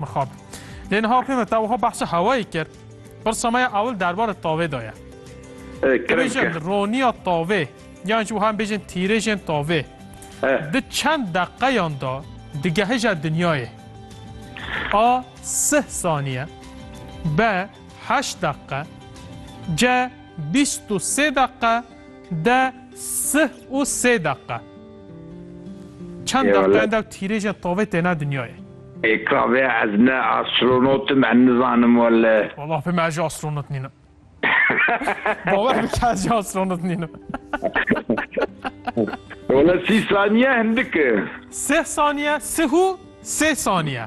Mixab. Lê niha pê me te wiha behsa hewayê kir. Pirsa me ya ewil derbarê tavê de ye. Bêjin roniya tavê yan jî wiha em bêjin tîrêjên tavê di çend deqeyan de digehêje dinyayê. A sih saniye B heşt deqe C bîst û sê deqe D sih û sê deqe. Çend deqeyên dew tîrêjên tovê têne dinyayê. Ê kavê ez ne astronot im em nizanim wele. Wala pê me ez jî astronot nînim. Bawer bike ez jî astronot nînim. Wala sî saniye hindik e. Sih saniye, sih û sê saniye.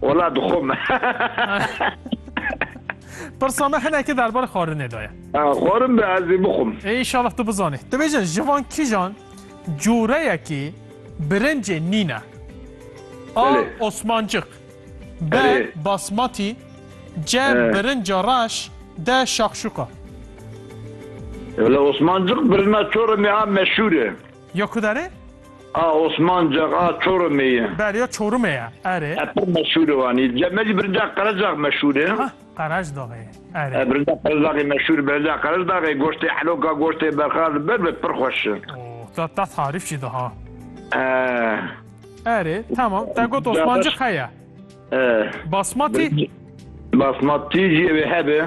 Wala dixwe me. Pirsa me hinekî derbarê xwarinê de ye. Xwarin be ez ê bixwim. Înşallah tu bizanî. Dibêje ji van kîjan coreyekî birincê nîn e. A. Osmancik B. Basmatî C. Birinca reş D. Şakşuka. Wala Osmancik birina çoremê a meşhûr e. Ya ku dere? A Osmancak, a Çorumê ye. Bel ya Çorumê ye, erê. E pir meşhur e wan. Î me jî birinca Qerecax meşhur e. Heh, Qereçdaxê, erê. E birinca Qerecaxê meşhur e. Birinca Qereçdaxê goştê heloka, goştê berxa li ber be pir xweş e. O, te te tarîf jî da ha. E. Erê, temam. Te got Osmancik heye. E. Basmati? Basmati jî ewê hebe.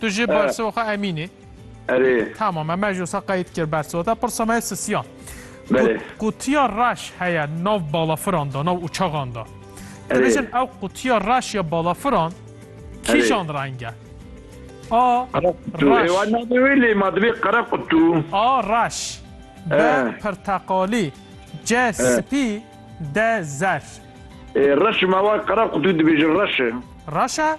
Tu jê bersiva xwe emînî. Erê. Tamam me ji wisa qeyd kir bersiva te pirsa me sisiya. Belê. Qutiya reş heye nav balafiran da nav uçaxan da. Dibêjin ew qutiya reş ya balafiran kîjan renge? A. Reş. Wê ma divê qere qutu. A. Reş. B. Pirteqalî. C. Spî. D. Zer. Reş me wa qere qutu dibêjin reş e. Reş e?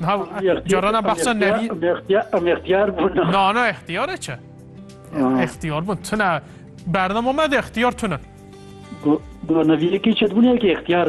Niha carana behsa nevî... Em ixtiyar bûn. Na na ixtiyar e çi? Ixtiyar bûn. Tune bernama me de ixtiyar tune. Got neviyekî çi dibûn yekî ixtiyar